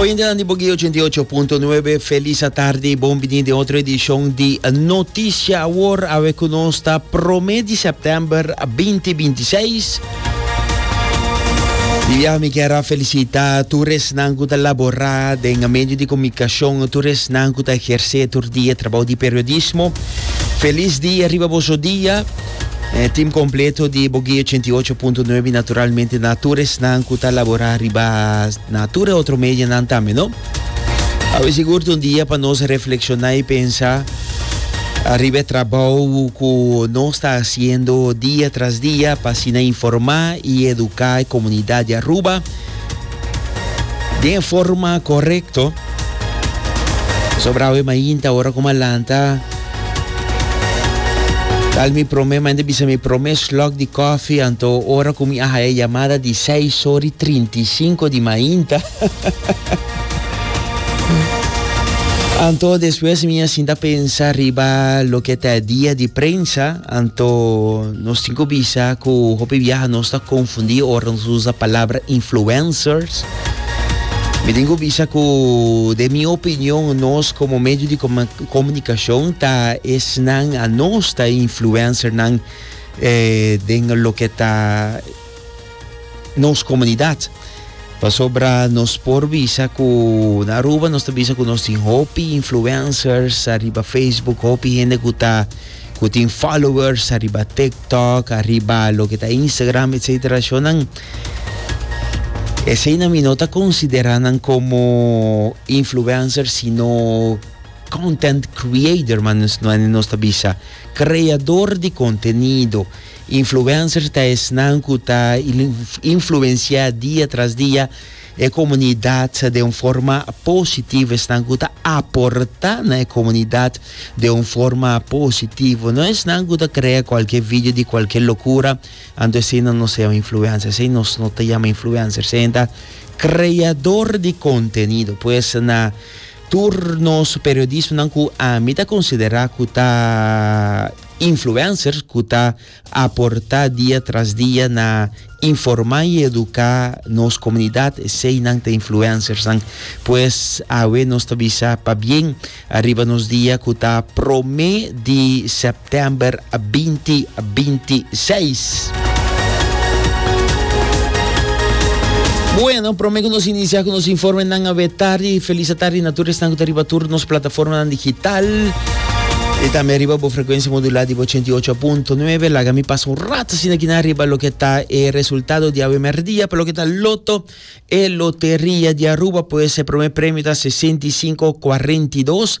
Oyentenan di Boguí 88.9, felis atardi, bon biní den otro edishon di Noticia Awor. Awe ku nos ta promé di sèptèmber 2026. Di biaha mi kier a felisitá tur esnan ku ta laborá den medio di komunikashon, tur esnan ku ta ehersé tur dia e trabou di periodismo. Felis dia riba boso dia. E tim kompleto di Bogi 88.9 naturalmente na tur esnan ku ta labora riba na tur e otro medianan tambe, no? Awe sigur un dia pa nos reflekshoná i pensa arriba e trabou ku nos ta hasiendo dia tras dia pa asina informá i eduká e komunidat di Aruba. den e forma korekto. Pasobra awe mainta ora ku ma lanta tal mi promé manda bisa mi promé slok di kòfi anto ora ku mi a haya yamada di seis or i trinta i sinku di mainta anto despues mi a sinta pensa riba loke ta e dia di prensa Anto nos tin ku bisa ku hopi biaha nos ta konfundí ora nos usa palabra influencers. Mi tin ku bisa ku den mi opinion nos komo medio di komunikashon ta esnan a nos ta e influencernan eh, den loke ta nos comunidad. Pasobra nos por bisa cu na Aruba nos ta bisa cu nos tin hopi influencers arriba Facebook, hopi hende cu ta cu tin followers arriba TikTok, arriba lo que ta Instagram, etcétera. Shonan ese na mi no ta consideranan como influencers sino content creator, man nos, nos ta bisa creador de contenido. Influencer ta esnan cu ta influencia dia tras dia e comunidad de un forma positivo, esnan cu ta aporta na e comunidad de un forma positivo, no esnan cu ta crea cualkier video di cualkier locura, anto eseinan no ta yama influencer, esei no ta yama influencer, eseinan ta creador di contenido, pues na tur nos periodismonan cu ami ta considera cu ta. Influencers cu ta aporta dia tras dia na informa y educa nos comunidad, eseynan ta influencersnan. Pues awe nos ta bisa pabien ariba nos dia cu ta prome di September binti binti seis. Bueno, prome cu nos inicia cu nos informenan awe tardi. Feliz atardi na tur esnan cu ta riba tur nos plataformanan digital. Y también riba bo frecuencia modulada di bo 88.9. Laga mi pasa un rato así aquí na riba lo que está el resultado de awe merdia para lo que está loto. El lotería de Aruba pues el primer premio está 6542.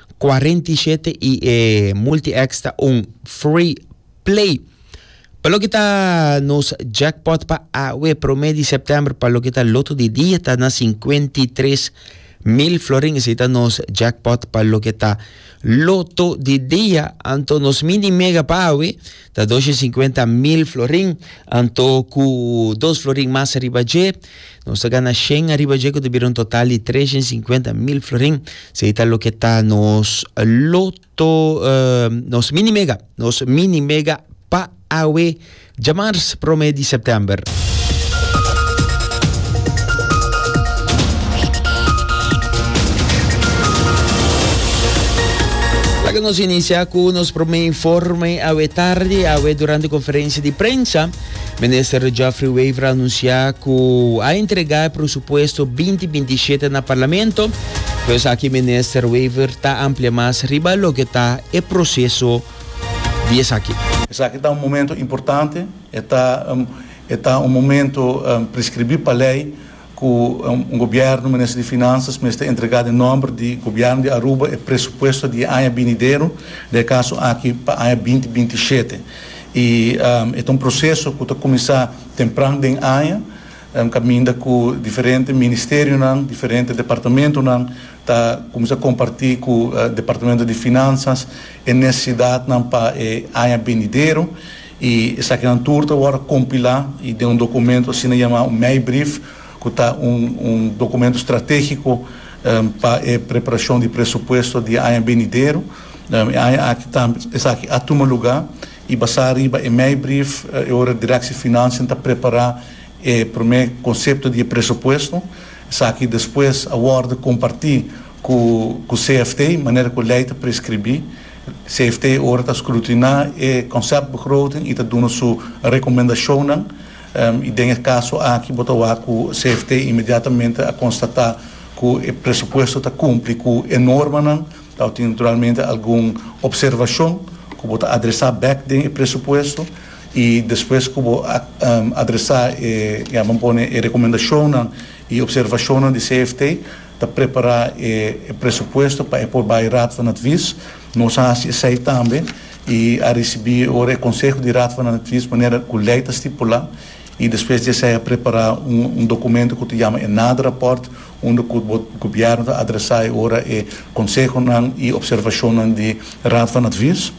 47 y e multi-X ta un free play. Pa lo que ta nos jackpot pa awe prome di septiembre pa lo que ta loto di dia ta na 53 mil florin. Ese ta nos jackpot pa lo que ta loto di dia. Anto nos mini mega pa awe Ta dos i sinkuenta mil florin, anto ku dos florin mas ariba dje, nos ta gana shen ariba dje ku ta bira un total di tres i sinkuenta mil florin. Esei ta loke ta nos loto, nos mini mega, nos mini mega pa awe djamars prome di sèptèmber. Laga nos inicia cu nos prome informe. Awe tardi, awe durante conferencia di prensa, Minister Geoffrey Wever a anuncia cu a entrega e presupuesto binti binti shete na Parlamento. Pues aki Minister Wever ta amplia mas riba loke ta e proceso di esaki. Esaki ta un momento importante. E ta e ta un momento prescribi pa ley cu un gobierno, Minister di Finanzas, mester entrega den nomber di gobierno di Aruba e presupuesto di e aña binidero, den e caso aki pa aña binti binti shete. Y e ta un proceso cu ta cuminsa tempran den aña, caminda cu diferente ministerionan, diferente departamentonan ta cuminsa comparti cu Departamento di Finanzas e necesidadnan pa e aña binidero. I esakinan tur ta wòrdu kompilá i den un dokumento asina yamá un meibrief, ku ta un un dokumento stratégiko pa e preparashon di presupuesto di e aña benidero. E aña aki tambe esaki a tuma lugá i basá riba e meibrief e ora Direksie Finansian ta prepará e promé konsepto di e presupuesto. Esaki despues a wòrdu kompartí ku ku CFT manera ku lei ta preskribí. CFT ora ta scrutiná e conceptbegroting y ta duna su recomendacionnan y den e caso aki bo ta wak cu CFT inmediatamente a constata cu e presupuesto ta cumpli cu e normanan dau tin naturalmente algun observacion cu bo ta adresa bek den e presupuesto y despues cu bo a adresa e ya bo pone e recomendacionnan y observacionnan di CFT. ta prepara e presupuesto pa e por bai Raad van Advies. Nos a hasi esei tambe i a risibi ora e konseho di Raad van Advies manera ku lei ta stipula i despues di esei a prepara un dokumento ku ta yama e naderapòrt unda ku bo gobièrnu ta adresá e ora e konsehonan i opservashonnan di Raad van Advies.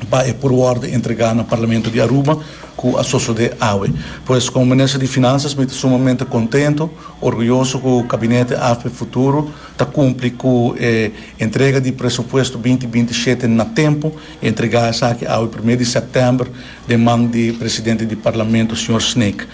pa e purworde entregá na Parlamento di Aruba ku a sosodé awe. Pues komo Minister di Finansas mi ta sumamente kontento, orguyoso ku Gabinete AFP Futuro ta kumpli ku e entrega di Presupuesto binti binti i shete na tempu, e entregá esaki awe promé di sèptèmber den man di Presidente di Parlamento, señor Snaek.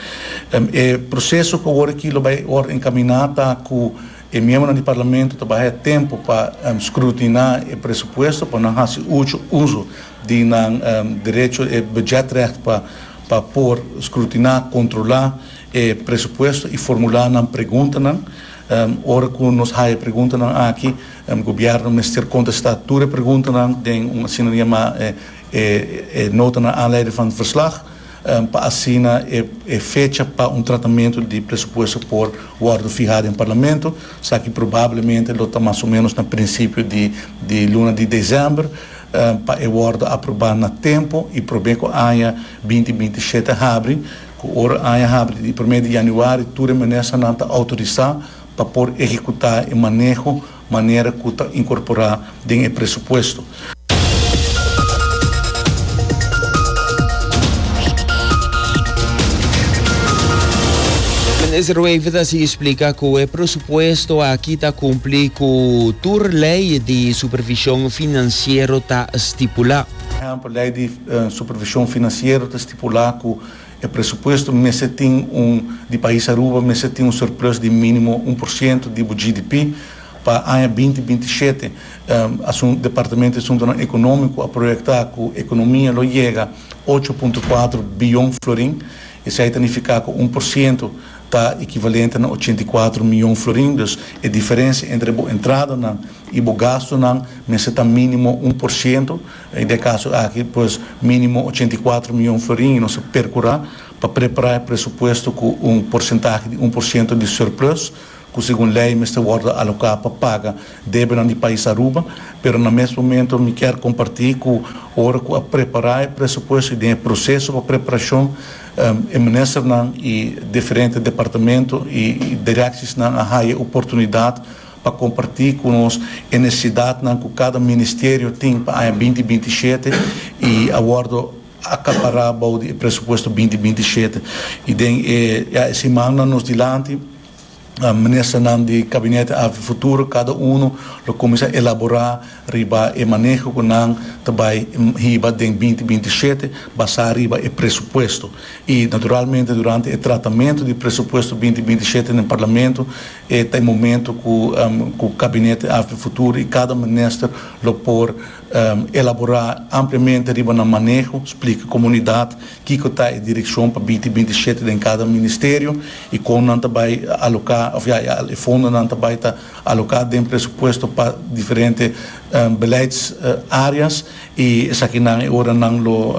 E proseso ku awor aki lo bai wòrdu enkaminá ta ku. E miembronan di Parlamento ta baha e tempu pa scrutiná e presupuesto pa nan hasi ucho uso di nan derecho, e budgetrecht, pa por scrutiná, controlá, e presupuesto i formulá nan preguntanan. Ora cu nos haya e preguntanan aki, Gobierno mester contestá tur e preguntanan den un asinanier ma e notanan aanleiding van het verslag. pa asina e fecha pa un tratamentu di presupuesto por wòrdu fihá den Parlamento, sa ki probablemente lo ta mas o ménos na prinsipio di di luna di desèmber, pa e wòrdu aprobá na tempu i promé ku aña binti binti i shete habri, ku ora aña habri di promé di yanüari tur e ministranan ta outorisá pa por ehekutá e maneho manera cu ta incorpora den e presupuesto. Minister Ruiven ta sigui splica cu e presupuesto aki ta cumpli cu tur ley di supervision financiero ta stipula. Ejemplo, ley di supervision financiero ta stipula cu. E presupuesto mester tin un di pais Aruba mester tin un surplus di minimo un por ciento di bo GDP pa aña binti binti shete. Asun Departamento di Asuntonan Economico a proyecta cu economia lo yega ocho punto cuatro biyon florin. Esai ta nifica cu un por ciento ta equivalente na ochenta y cuatro miyon florin. Dus e diferencia entre bo entradanan y bo gastonan mester ta minimo un por ciento. I den e kaso aki pues minimo ochenta i kuater mion florin i nos a perkurá pa prepará e presupuesto ku un porsentahe di un por siento di surplus ku segun lei mester wòrdu aloká pa paga debenan di pais Aruba. Pero na mes momento mi kier kompartí ku ora ku a prepará e presupuesto i den e proseso pa preparashon e ministernan i diferente departamento i direksisnan a haya oportunidat pa kompartí ku nos e nesesidatnan ku kada ministerio tin pa aña binti binti i shete i a wòrdu akapará bou di e presupuesto binti binti i shete. I den e ya e simannan nos dilanti ministernan di Gabinete Afrofuturo kada unu lo kuminsá elaborá riba e maneho ku nan ta bai hiba den binti binti i shete basá riba e presupuesto i naturalmente durante e tratamentu di presupuesto binti binti i shete den Parlamento E ta e momento cu cu Gabinete Afd Futuro y cada Minister lo por elabora ampliamente riba nan maneho, splica comunidad kico ta e direccion pa binti binti shete den cada Ministerio y con nan ta bay aloca of ya e fondonan ta bay ta aloca den presupuesto pa diferente beleids areas. I esakinan e ora nan lo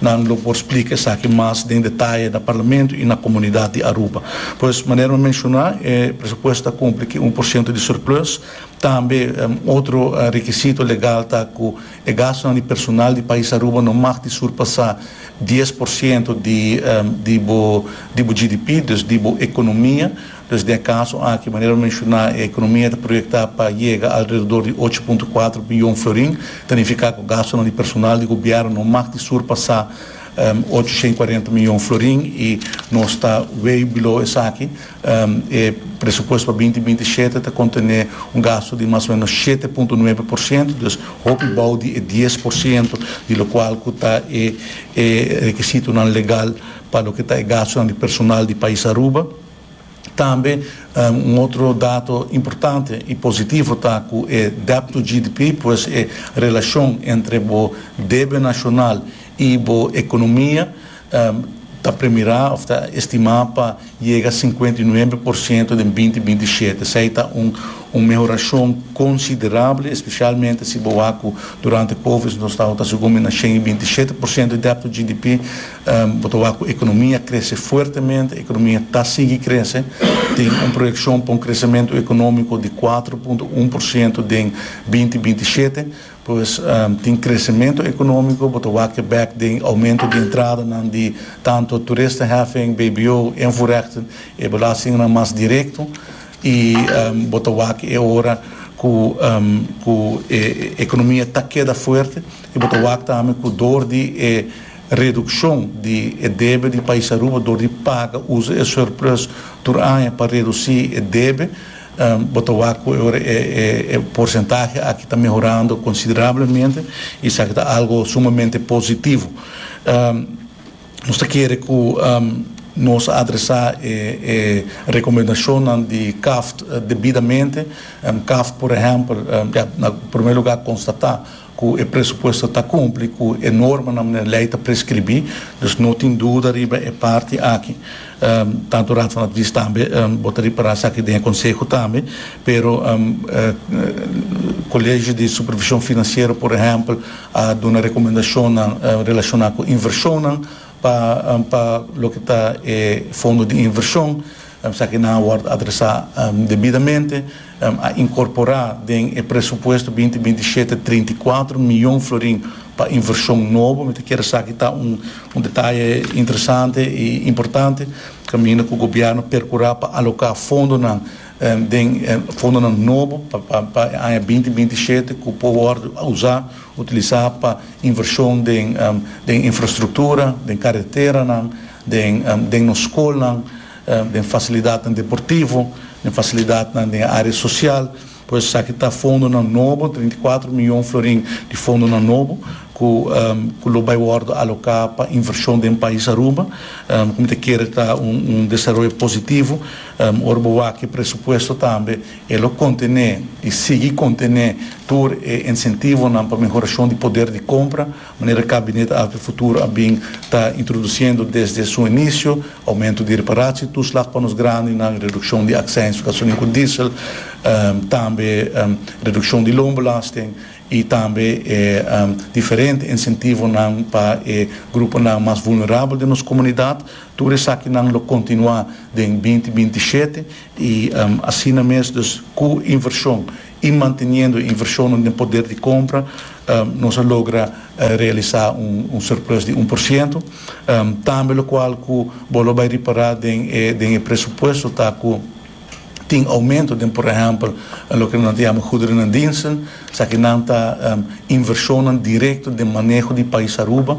nan lo por splika esaki mas den detaye na Parlamento i na komunidat di Aruba. Pues, manera mi menshoná, e presupuesto ta kumpli ku un por siento di surplus. Tambe otro rekisito legal ta ku e gastunan di personal di pais Aruba no mag di surpasá dies por siento di di bo di bo GDP, dus di bo ekonomia. Pues den e kaso aki, manera lo menshoná, e ekonomia ta proyektá pa yega alredor di ocho punto kuater biyon florin, ta nifiká ku gastunan di personal di gobièrnu no mag di surpasá ochocientos y cuarenta miyon florin i nos ta way below esaki. E presupuesto pa binti binti i shete ta kontené un gastu di mas o ménos shete punto nuebe por siento, dus hopi bou di e dies por siento di lokual ku ta e rekisitonan legal pa loke ta e gastunan di personal di pais Aruba. Tambe un otro dato importante y positivo ta cu e debt to GDP, pues e relacion entre bo debe nacional y bo economia ta premira of ta estima pa yega cincuenta y nuebe por ciento den binti binti shete. Esey ta un mehoracion considerable, especialmente si bo wak cu durante Covid nos tabata segun mi na shen y binti shete por ciento di debt to GDP, Bo ta wak cu economia crece fuertemente, economia ta sigui crece, tin un proyeccion pa un crecemento economico di cuatro punto un por ciento den binti binti shete, pues tin crecemento economico, bo ta wak ke bek den aumento di entradanan di tanto toeristenheffing, bbo, invoerrechten, e belastingennan mas directo, y bo ta wak ke e ora cu cu e economia ta keda fuerte, y bo ta wak tambe cu door di e. Redukshon di e debe di pais Aruba dor di paga usa e surplus tur aña pa redusí e debe. Bo ta wak ku e ora e porsentahe aki ta mehorando konsiderablemente i esaki ta algo sumamente positivo. Nos ta kere ku nos a adresá e rekomendashonnan di Kaft debidamente. Kaft, por ehèmpel, ya na primer lugá konstatá. ku e presupuesto ta kumpli ku e normanan den lei ta preskribí, dus no tin duda riba e parti aki. Tantu Raad van Advies tambe bo ta ripará esaki den e konseho tambe, pero Kolegio di Supervishon Finansiero por ehèmpel a duna rekomendashonnan relashoná ku invershonnan pa loke ta e fondo di invershon. Esaki nan a wòrd adresá debidamente, a inkorporá den e presupuesto binti binti shete trinta i kuater mion florin pa invershon nobo. Mi ta kere esaki ta un un detaye interesante i importante. Kaminda ku gobièrnu perkurá pa aloká fondonan den fondonan nobo pa pa pa e aña binti binti shete ku por wòrdu usá, utilisá pa invershon den den infrastruktura, den kareteranan, den nos skolnan, den fasilidatnan deportivo, den fasilidatnan den e área sosial. Por eso esaki ta fondonan nobo, treinta i kuater mion florin di fondonan nobo ku ku lo bai wòrdu aloká pa invershon den pais Aruba, ku mi ta kere ta un desaroyo positivo. Ora bo wak e presupuesto tambe e lo kontené i sigui kontené tur e insentivonan pa mehorashon di poder di kompra. Manera Kabinet Alter Futuro a bin ta introdusiendo desde su inicio, aumento di reparatie, toeslag pa nos grandenan, reduccion di accijns gasolin cu diesel, tambe reduccion di loonbelasting y tambe e diferente incentivonan pa e gruponan mas vulnerabel den nos comunidad. Tur esakinan lo continua den binti binti shete y asina mes, dus cu inversion y manteniendo inversionnan den poder di compra nos a logra realisa un surplus di un por ciento. Tambe locual cu bo lo bay ripara den e presupuesto ta cu tin aumento den por ehempel loke nan ta yama goederen en diensten, esaki nan ta inversionnan directo den maneho di pais Aruba.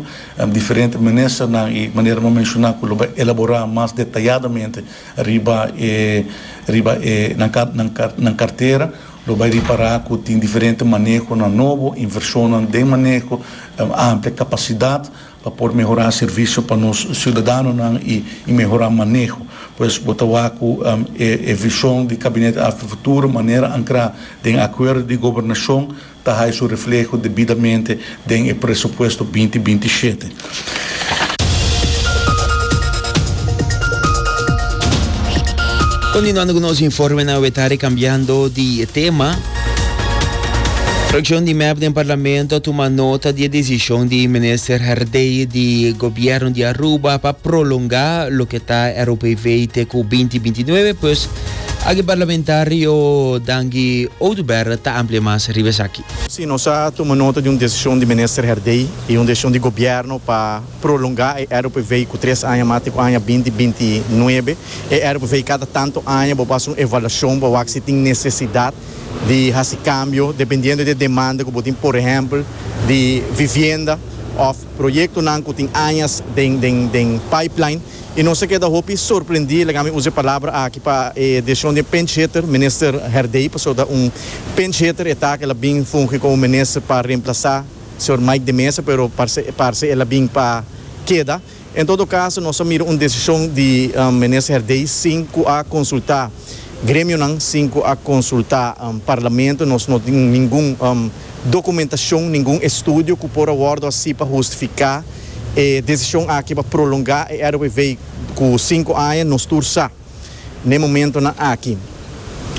Diferente ministernan y manera bo a menciona cu lo bay elabora mas detayadamente. Riba e riba e nan ka nan ka nan kartera lo bai ripará ku tin diferente manehonan nobo, invershonnan den maneho, amplia kapasidat pa por mehorá servisio pa nos siudadanonan i i mehorá maneho. Pues bo ta wak ku e e vishon di Gabinete Afro Futuro manera ankrá den Akuerdo di Gobernashon ta hay su refleho debidamente den e presupuesto binti binti i shete. Continuando cu nos informenan we tari cambiando di tema. Fraccion di mep den Parlamento a tuma nota di e decision di Minister Herdey di Gobierno di Aruba pa prolonga loke ta e ROPV te cu binti binti nuebe pues Aki parlamentario Dangi Oduber ta amplia mas riba esaki. Sí, nos a tuma nota di un desishon di Minister Herdey i un desishon di Gobièrnu pa prolongá e RPV ku tres aña mas te ku aña binti binti nuebe. E RPV kada tantu aña bo por hasi un evaluashon pa wak si tin nesesidat di hasi kambio dependiendo di e demanda ku bo tin, por ehèmpel, di vivienda òf proyektonan ku tin añas den den den pipeline. I nos a keda hopi sorprendí, laga mi usa e palabra aki, pa e desishon di e pinchhitter, Minister Herdey, pasobra un pinchhitter e ta, el a bin fungi komo minister pa remplasá señor Mike de Meza, pero parse parse el a bin pa keda. En todo kaso, nos a mira un desishon di Minister Herdey sin ku a konsultá Gremionan sin cu a consulta Parlamento. Nos no tin ningun documentacion, ningun estudio cu por a wordo así pa hustifica e decision aki pa prolonga e RWV cu cinco aña. Nos tur sa n'e momentonan aki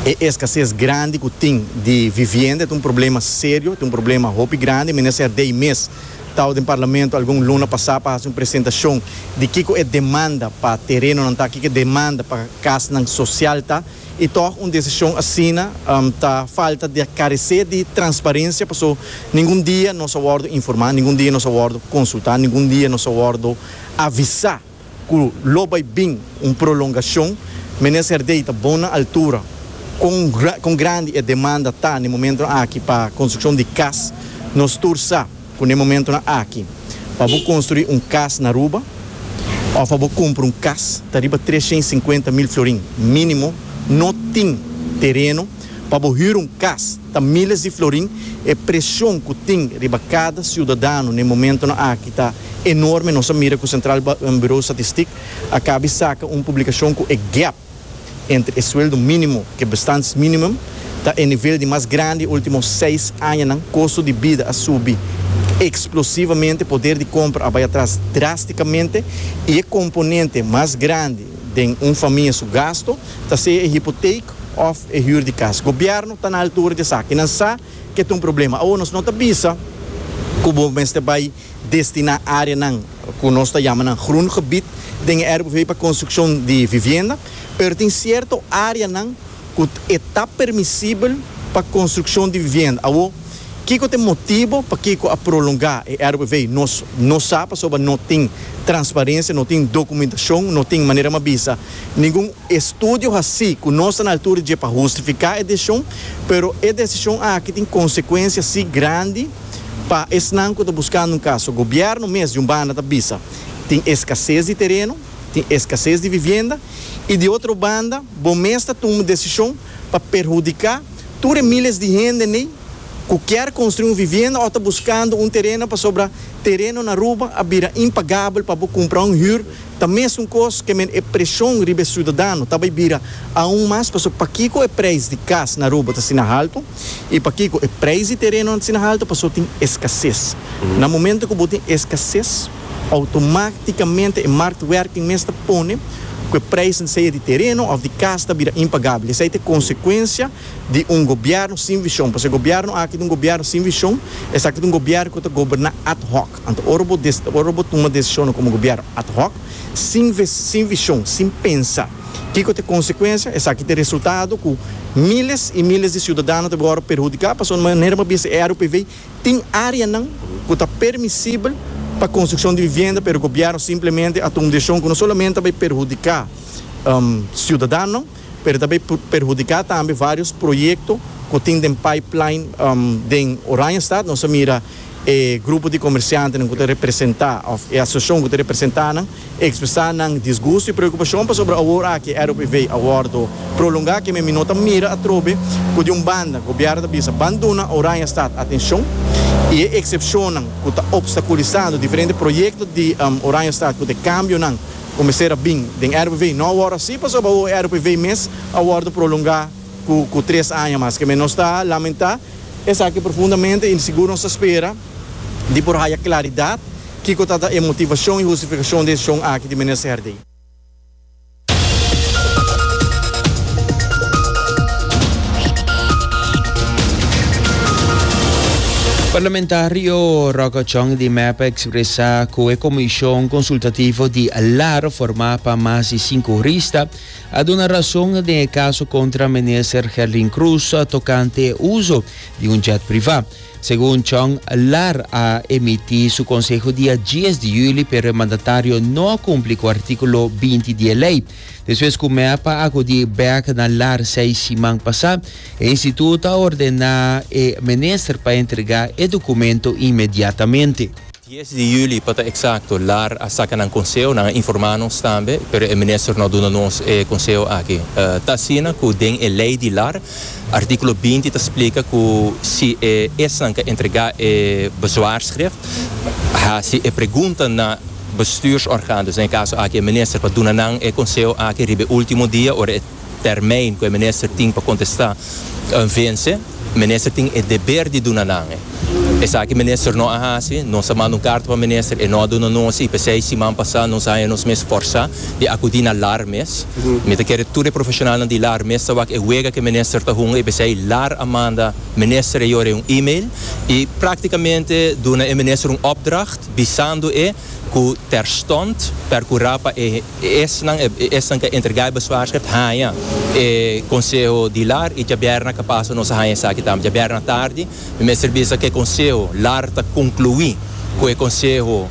e escasez grandi cu tin di vivienda ta un problema serio, ta un problema hopi grandi, mester ser dei mes. Tau den Parlamento algun luna pasá pa hasi un presentashon di kiko e demanda pa terenonan ta, kiko e demanda pa kasnan sosial ta, i tòg un desishon asina ta falta di a karesé di transparensia paso ningun dia nos a wòrdu informá, ningun dia nos a wòrdu konsultá, ningun dia nos a wòrdu avisá. cu lo bay bin un prolongacion, Minister Serdey ta bon na altura con con grandi e demanda ta n'e momentonan aki pa construccion di cas. Nos tur sa cu n'e momentonan aki pa bo construi un cas na Aruba of pa bo cumpra un cas ta riba trescientos cincuenta mil florin minimo, no tin tereno pa bo hura un cas. Ta miles di florin. E presion ku tin riba kada siudadano na e momentonan aki ta enorme. Nos a mira ku Sentral Buro Statistik a kabi saka un publikashon ku e gèp entre e sueldo mínimo ku e bestaansminimum ta e nivel di mas grandi e último seis añanan. Kosto di bida a subi eksplosivamente, poder di kompra a bai atras drástikamente i e komponente mas grandi den un famia su gasto, ta sea e hipoteek of e huur di cas. Gobierno ta na altura di esaki. Nan sa ke ta un problema. Awor nos no ta bisa cu bo mester bay destina areanan cu nos ta yama nan groen gebied den e RBV pa construccion di vivienda, pero tin cierto areanan cu e ta permisibel pa construccion di vivienda. Awor, kico ta e motibo pakico a prolonga e RBV? Nos no sa pasobra no tin transparencia, no tin documentacion, no tin manera m'a bisa. Ningun estudio haci cu nos ta na altura dje pa hustifica e decision, pero e decision aki tin consecuencia si grandi pa esnan cu ta buscando un caso. Gobierno mes di un banda ta bisa tin escasez di tereno, tin escasez di vivienda y di otro banda bo mes ta tuma decision pa perhudica tur e miles di hende n'ey cu kier construi un vivienda o ta buscando un tereno pasobra tereno n'Aruba a bira impagabel pa bo cumpra un huur Ta mesun kos ke men e preshon riba e siudadano ta bai bira aun mas pasobra pakiko e preis di kas na Aruba ta asina haltu i pakiko e preis di terenonan ta asina haltu pasobra tin eskases. Na momento ku bo tin eskases outomáktikamente e marktwerking mes ta pone ku e preisnan sea di tereno òf di kas ta bira impagabel. Esei ta e konsekuensia di un gobièrnu sin vishon pasobra e gobièrnu aki ta un gobièrnu sin vishon esaki ta un gobièrnu ku ta goberná ad hoc. Anto ora bo ora bo tuma desishonnan komo gobièrnu ad hoc, sin ve sin vishon, sin pensa kiko ta e konsekuensia, esaki ta e resultado ku míles i míles di siudadano ta gora perhudiká pasobra di manera mas bisti e RUPV tin áreanan ku ta permisibel pa konstrukshon di vivienda pero gobièrnu simplemente a tuma un desishon ku no solamente a bai perhudiká siudadanonan pero ta bay perhudica tambe varios proyecto cu tin den pipeline den Oranjestad, nos a mira e grupo di comerciantenan cu ta representa of e asociacion cu ta representa nan expresa nan disgusto y preocupacion pasobra awor aki e ROPV a wordo prolonga kimen mi no ta mira atrobe cu di un banda gobierno ta bisa ban duna Oranjestad atencion y e excepcionnan cu ta obstaculisando diferente proyecto di Oranjestad cu ta e cambionan ku mester a bin den RPV. No a wòrdu así pasobra awo e RPV mes a wòrdu prolongá ku tres aña mas. Ke men nos ta lamentá esaki profundamente i sigur nos ta spera di por haya klaridat kiko tabata e motivashon i hustifikashon desishon aki di Minister Herdé. Parlamentario Rocco Chong di mep, Tresa cu e Comision Consultativo di Lara formá pa mas di sinku hurista a duna rason den e caso contra Minister Gerlin Croes tocante e uso di un jet privá. Segun Chong, Lar a emití su conseho dia dies di juli pero e mandatario no a cumpli cu articulo binti di e ley. Despues cu mep a acudí bek na Lar seis siman pasá, E instituto a ordená e minister pa entregá e dokumento inmediatamente. Dies di juli, pa ta eksakto, lar a saka nan konseo, nan a informá nos tambe, pero e minister no a duna nos e konseo aki. Ta asina ku den e lei di lar, artíkulo binti ta splika ku si e esnan ka entregá e bezwaarschrif, hasi e pregunta na bestuursorgaan, dus na e kaso aki e minister, pa duna nan e konseo aki riba e último dia ora e. Termijn ku e minister tin pa kontestá vense, minister tin e deber di duna nan e. Esaki minister no a hasi, nos a manda un karta pa minister, e no a duna nos i p'esei siman pasá nos a haña nos mes fòrsá di akudí na lar mes. Mi ta kere tur e profeshonalnan di lar mes ta wak e wega ku e minister ta hunga i p'esei lar a manda minister e yore un email i práktikamente duna e minister un opdracht bisando e ku terstond perkurá pa e E esnan e esnan ke a entrega e bezwaarschrift haña e konseho di lar i djaberna ke pasa nos a haña esaki tambe. Djaberna tardi mi mester bisa ke konseho lar ta konkluí ku e konseho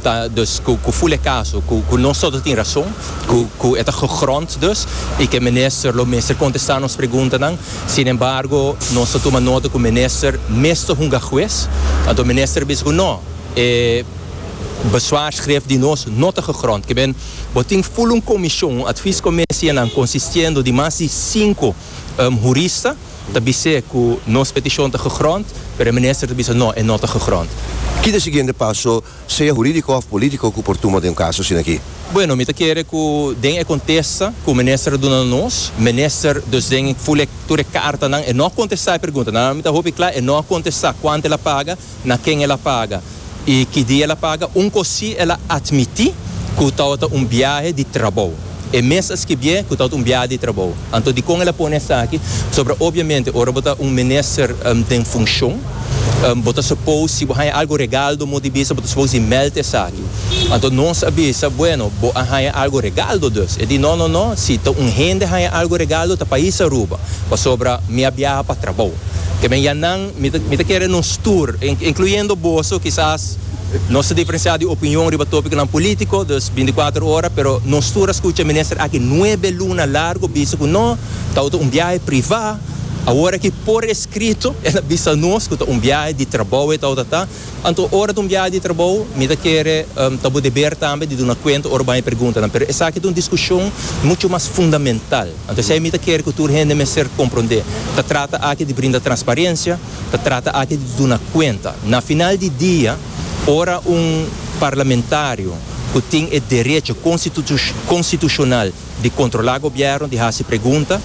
ta dus ku ku ful e kaso ku ku nosoto ta tin rason, ku ku e ta gegrond dus i ku e minister lo mester kontestá nos preguntanan. Sin embargo nos ta tuma nota ku minister mes ta hunga hues anto minister a bisa ku no e Bezwaarskrif di nos no ta gegrond. Kiben, bo tin ful un komishon, un adviescomisianan consistiendo di mas di sinku hurista ta bis'é cu nos peticion ta gegrond, pero e Minister ta bisa no, e no ta gegrond. Ki ta e siguiente paso, sea huridico of politico, cu por tuma den un caso asina aki? Bueno, mi ta kere cu den e contesta cu e Minister a duna na nos, Minister dus den ful e tur e cartanan e no a contesta e preguntanan. Mi ta hopi cla, e no a contesta cuanto el a paga. na ken el a paga i ki dia el a paga, un kos si el a atmití ku tabata un biahe di trabou, e mes a skibié ku tabata un biahe di trabou. Anto dikon el a pone esaki? Pasobra obiamente ora bo ta un minister den funshon, bo ta supos si bo haña algu regal do mos di bisa bo ta supos di mèlt esaki. Anto nos a bisa, Bueno, bo a haña algu regal do dus? E di, No, no, no, si ta un hende haña algu regal do ta pais Aruba, pasobra mi a biaha pa trabou. Te men ya nan. Mi ta kere nos tur, incluyendo boso, kisas nos ta diferencia di opinion riba topiconan politico, dus binticuater ora, pero nos tur a scucha minister aki nuebe luna largo bisa cu no, tau ta un biahe priva, awor aki por escrito el a bisa nos cu ta un biahe di trabou e tau ta ta, anto ora ta un biahe di trabou mi ta kere ta bo deber tambe di duna cuenta ora baña e preguntanan, pero esaki ta un discusion mucho mas fundamental. A pesey mi ta kere ku tur hende mester komprondé, ta trata aki di brinda transparensia, ta trata aki di duna kuenta. Na final di dia, ora un parlamentario ku tin e derecho konstitushonal di kontrolá gobièrnu, di hasi pregunta,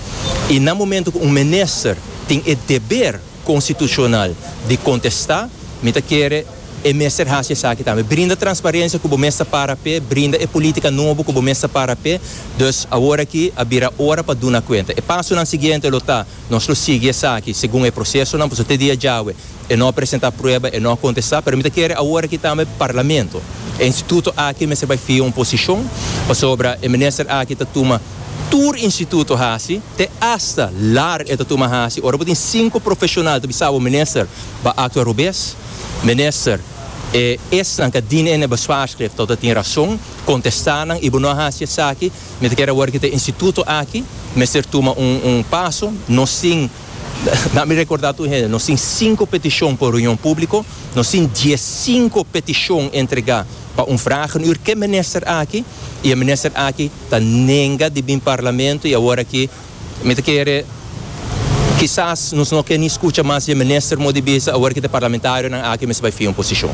i na momentu ku un minister tin e deber konstitushonal di kontestá, mi ta kere, E mester hasi esaki tambe. Brinda transparencia cu bo mes ta para p'e, brinda e politica nobo cu bo mes ta para p'e. Dus, awor aki a bira ora pa duna cuenta. E pasonan siguiente lo ta, nos lo sigui esaki segun e procesonan, pasobra te dia djawe e no a presenta prueba, e no a contesta. Pero mi ta kere awor aki tambe Parlamento, e instituto aki mester bay fia un posicion, pasobra e minister aki ta tuma tur instituto hasi, te hasta lar e ta tuma hasi. Ora bo tin cinco profesional ta bisa bo minister, ba actua robes. Minister, E esnan ka dine ne bezwaarschrift tok ta tin rason, contesta nan y bo no a haci esaki, mi ta kier awor ki ta instituto aki mester tuma un paso, nos tin, laat mi recorda tur hende, nos tin cinco peticion pa un reunion publico, nos tin diescinco peticion entrega pa un vraag en uur ke minister aki y e minister aki ta nenga di bin parlamento y awor aki Mi ta kere, kisas nos no ke ni skucha mas dje minister Modibiza awor ke ta parlamentarionan aki mes bai fia un posishon.